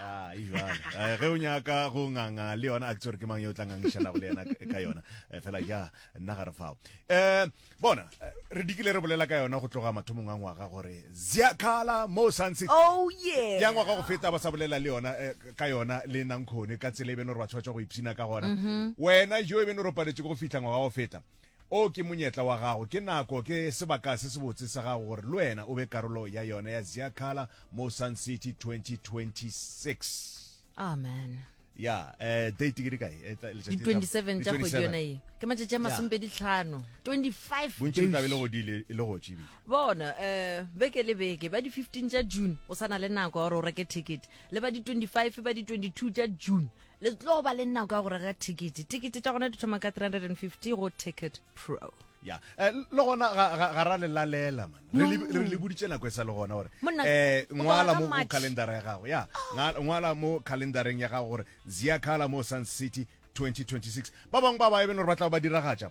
Ah, e eh, ge o nyaka go nganga le yona a ke tsore ke mang yo tla ngangišanago le yena ka yona eh, fela ja nna ga re fao um bona re dikile re bolela ka yona go tloga mathomong a ngwaga gore ziakala mo santse oh, ya ngwaga go feta ba sa bolela le yona ka yona le nankgone ka tsela e beno re ba tshwatshwa go ipshina ka gona mm-hmm. wena jo e beno re paletše go fitlha ngwaga go feta O ke monyetla wa gago, ke nako, ke sebaka se sebotse sa gago gore le wena o be karolo ya yona ya Ziakhala mo Sun City 2026. Amen. Ya, eh, date ke di kae? Eh, tla- letšatši Di la- 27 di tša kgwedi 27. yona ye. Ke matšatši a masomepedi tlhano. 25 Bontši le tla be le days. go di le le go tšibile. bona um beke le beke ba di-15 tša june o sa na le nako ya gore o reke ticket le ba di-25 ba di-22 tša june Le tlo ba le nako ya go reka thekete. Tekete tša gona di thoma ka 350 go Ticket Pro. ya eh, le gona ga- ga ga ra le lalela man re le- re le boditše nako e sa le gona gore Monna, um o ngwala ba mo ka go March. calendara ya gago ya nga- ngwala mo calendareng ya gago gore ziakala mo sun city 2026 ba bangwe ba ba e beng gore ba tla ba diragatša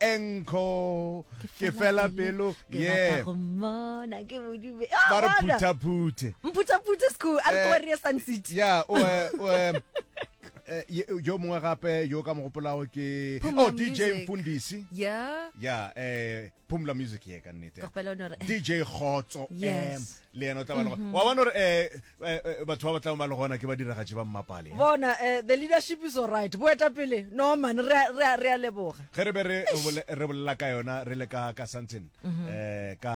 enkho ke fela pelo ye ba re phuthaphuthe mphuthaphuthe school a re kobarie eh, sun city ya o eh, eh, yo mongwe gape yo ka mogopolago ke oh dj mfundisi ya ya eh phumla music ye ka nnete dj khotso yes. le yena o tla ba le gona wa bona gore um batho ba ba tlago ba le gona ke badiragatši ba mmapale bona eh, the leadership is all right boetapele no man re a- re a- re a leboga ge re be re bole- re bolela ka yona re le ka ka something um ka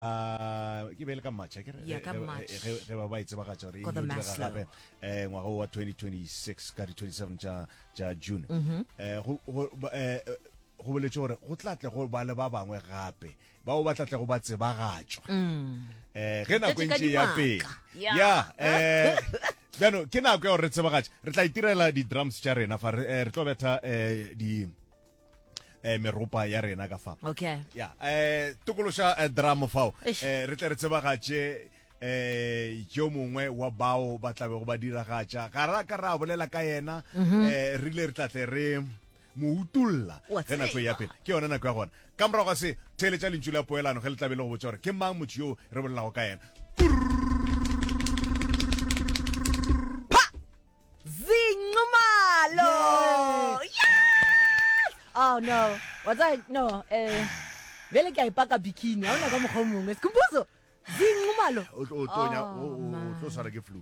ke be e le ka march akere Yeah, ka March. ge ba ba e tsebagatša gore e Ko the direga Maslow. gape eh ngwaga wa 2026 ka di 27 tša tša june eh go go ba- eh, eh, go boletse gore go tla tle go ba le ba bangwe gape bao ba tla tlago ba tsebagatšwa um ge nako e ntše ya pele ya um jaanong ke nako ya gore re tsebagatša re tla itirela di-drums tša rena fa re eh, tlo betha um di eh meropa ya rena ka fa okay ya eh tokološa eh, drama fao eh re tle re tsebagatše eh yo mongwe wa bao ba tlabe go ba diragatša ga ra ka ra bolela ka yena mhm. eh re ile re tlatle re mo utolla ge nako e ya pele ke yona nako ya gona ka morago ga se theeletša lentšu la poelano ge le tlabe le go botsa gore ke mang motho yoo re bolelago ka yena zinxumalo oh no watsa no eh bjale ke a ipaka bikini ga ona ka mokgwa o mongwe sekumposo zinxumalo o tlo tshwara ke flu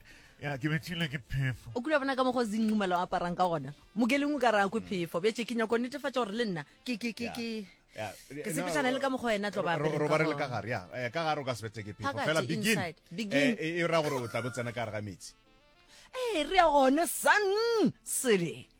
ya ke bethile ke phefo o kula bona ka mogo zinqumela o aparang ka gona mokeleng o ka ra kwe phefo bjatše ke nyako netefatša gore le nna ke ke ke ke ke sepetšana le ka mogo wena tlo robare le ka gare ya eh, ka gare o ka se bete ke phefo fela begin eh, eh, e ra gore o tla bo tsena ka gare ga metsi ee re ya gone sun sele